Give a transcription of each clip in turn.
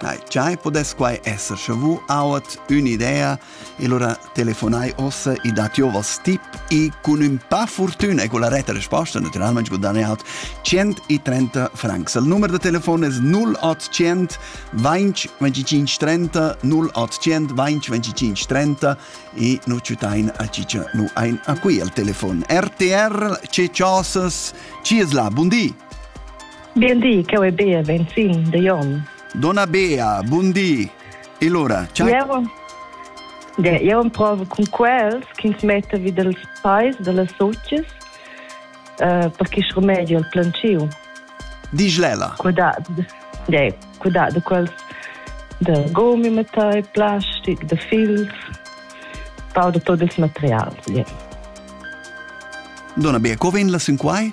Nei, giai podess quai esser sche vu auat ün'idea e lura telefonai ossa e dat jo vos tip e cun ün pa fortüna e con la retta risposta naturalmente guadagna out 130 francs. Il numero de telefono es 0800 20 25 30 0800 20 25 30 e nu ciutain a cicia nu ein a qui al telefon. RTR, ce ciosas, ci es là, buondì! Bien di, cheu è Bea Venzin de Jon. Donna Bea, bun di. E allora, ciao. Io, ja, io provo con quels che mette vi dels pais, delle socis, uh, perché è rimedio al planciu. Diglella. Cuidado, ja, cuidado quels de gomi mettai, plastic, de fils, pau de tot il material. Ja. Donna Bea, co vegn la sin quai?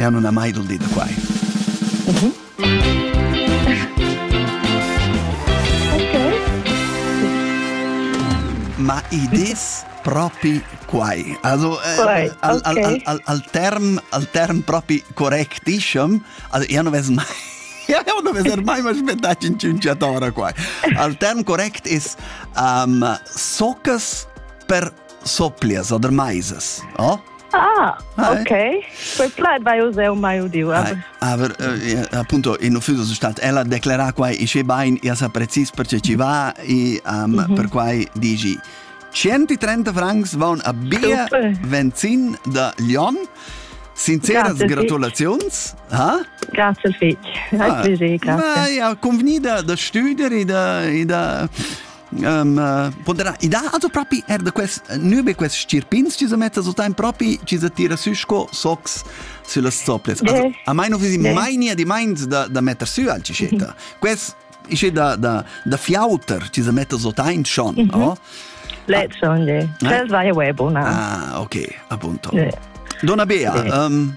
Eau nun ha mai dul di da quai. Ma i des propi quai. Also quai, äh, al, okay. al, al, al, term, al term propi correctischem, also io non ves mai io non ves mai mai aspettati in ciunciatora qua. Al term correct es um, soccas per soplias oder maisas, oh? Ah, ok. Quei plaid vai us eu mai udiu. Aber, aber eh, appunto in ufficio stat ella declara quai isce bain ia sa precis perce ci va e um, mhm. per quai dici 130 francs van a bia Venzin da Lyon. Sinceras gratulaziuns. Ha? Grazie al fich. Hai ah, piacere, grazie. Ma ja, convenida da studer e da, e da um, poderà i dà also propi er da quest nübe quest stirpins ci sa metta so time propi ci sa tira sü sco sox sulla stoples also a mai non visi mai nia di mind da da metter sü al cicetta quest isce da da da fiauter ci sa metta so time schon no Let's schon, ja. Das war ja Web, ne? Ah, okay, appunto. Ja. Donna Bea, um,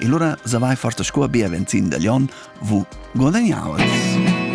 E lura savai forsa sco bia venzin da Glion, vu guadagnavas.